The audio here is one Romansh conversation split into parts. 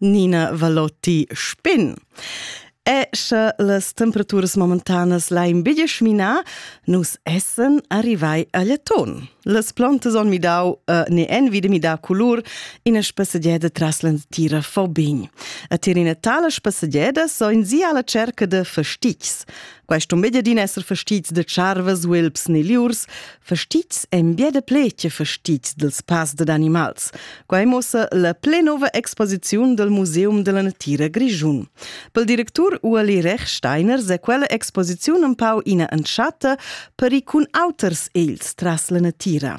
Nina Valotti Spin. E sche las temperaturas momentanas lain biglie schminà, nus essen arrivai a Leton. Las plantas on midau uh, ne envi de midar colur ina spassegieda tras l'entira Fobign. A tir ina tala spassegieda so in sia alla cerca de fastigs. Questo media din esser fastits de charvas, vilps ne liurs, fastits en bia de pletje fastits dels pas de animals. Quai muossa la plenova exposiziun del Museum della Natira Grischun. Pel directur Ueli Rechsteiner se quella exposiziun un pau ina entschatta per i cun auters els tras la natira.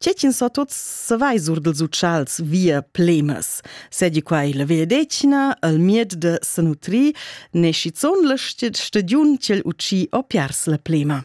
Tge ch'ins sa tuts savai sur dels utschals via plemas. Sedi quai la via decina, al mied de sanutri, ne schizon la stediun ch'el uci o piars la plema.